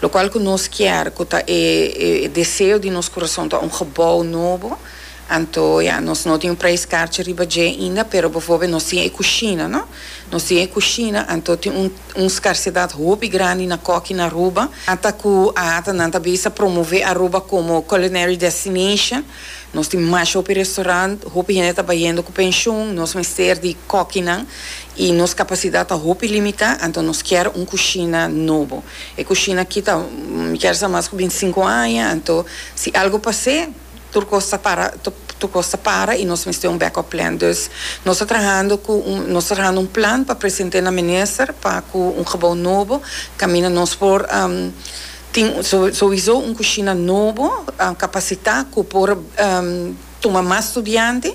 Locual cu nos kier cu ta e deseo di nos curason ta un gebouw nobo, anto ya, nos no tin un prijs kaartje riba dje ainda, pero bijvoorbeeld nos tin e cushina, no? Nos tin e cushina, anto tin un un scarcedad hopi grandi na coki na Aruba, ata cu a ata nan ta bisa promove Aruba como culinary destination. Nos tin mas hopi restaurant, hopi hende ta bayendo cu pensioen, nos mester di cokinan y nos capacidad ta hopi limita, anto nos kier un cushina nobo. E cushina aki ta, mi kier sa mas cu binti sinku aña, anto si algo pas'e, tur cos ta para, tur cos ta para y nos mester un backup plan. Dus nos ta trahando cu un, nos ta trahando un plan pa present'e na minister pa cu un gebou nobo caminda nos por. Tin sowiso un kushina nobo kapasitá ku por tuma mas studiante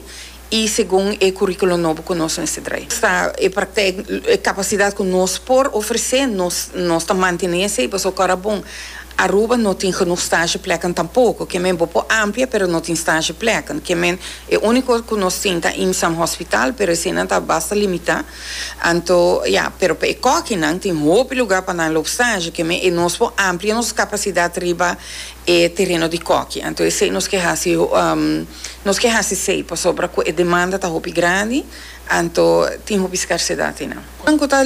i segun e kuríkulo nobo ku nos mester trae. Sta e praktèk, e kapasidat ku nos por ofresé, nos nos ta mantené esei pasobra ku ora bon Aruba no tin genoeg stage plèknan tampoko. Ke men bo por amplia pero no tin stage plèknan. Ke men e único kos ku nos tin ta IMSAM hospital pero eseinan ta basta limitá. Anto, ya, pero pa e kòkinan tin hopi lugá pa nan lop saji, kem'é e nos por amplia nos kapasidat riba e tereno di kòki. Anto esei nos ke hasi nos ke hasi sei pasobra ku e demanda ta hopi grandi, anto tin hopi skarsedat einan. Nan ku ta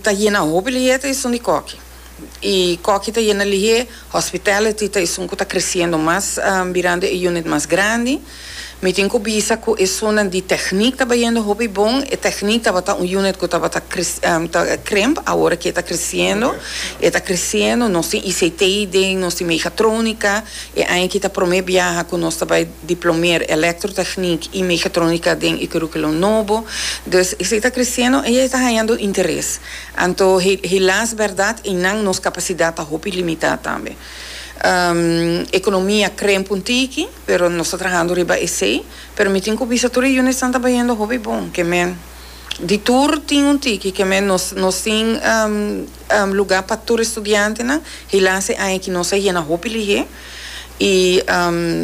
ta yena hopi leyeta esun di kòki. y koki ta yena lihé, hospitality ta esun ku ta kresiendo mas mirando e unit mas grandi. Mi tin ku bisa ku esunnan di techniek ta bayendo hopi bon, e techniek tabata un unit ku tabata ta krimp, awor aki e ta kresiendo, e ta kresiendo, nos tin ICT den, nos tin megatronica, e aña aki ta prome biaha ku nos ta bai diplomeer electrotechniek y megatronica den e kurukulum nobo, dus esei ta kresiendo y e ta hañando interes. Anto hilas berdad y nan nos capacidad ta hopi limita tambe. Economia kremp un tiki pero nos ta trahando riba esey, pero mi tin cu bisa tur e units nan ta bayendo hopi bon, ke men di tur tin un tiki ke men nos nos tin lugar pa tur e studiantenan, hilas e aña aki nos a yena hopi lihé. Y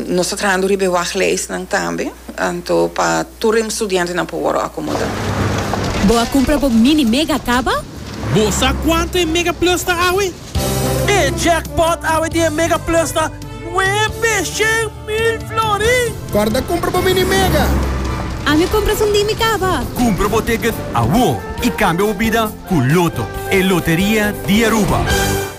nos ta trahando riba e wag leisnan tambe, anto pa tur e studiantenan por worde acomoda. Bo a cumpra bo Mini Mega caba? Bo sa cuanto e Mega Plus ta awe? E jackpot awe di e Mega Plus ta nuebe shen mil florin! Corda cumpra bo Mini Mega! Ami cumpra sundí mi caba! Cumpra bo ticket awor y cambia bo bida cu Lotto, e loteria di Aruba!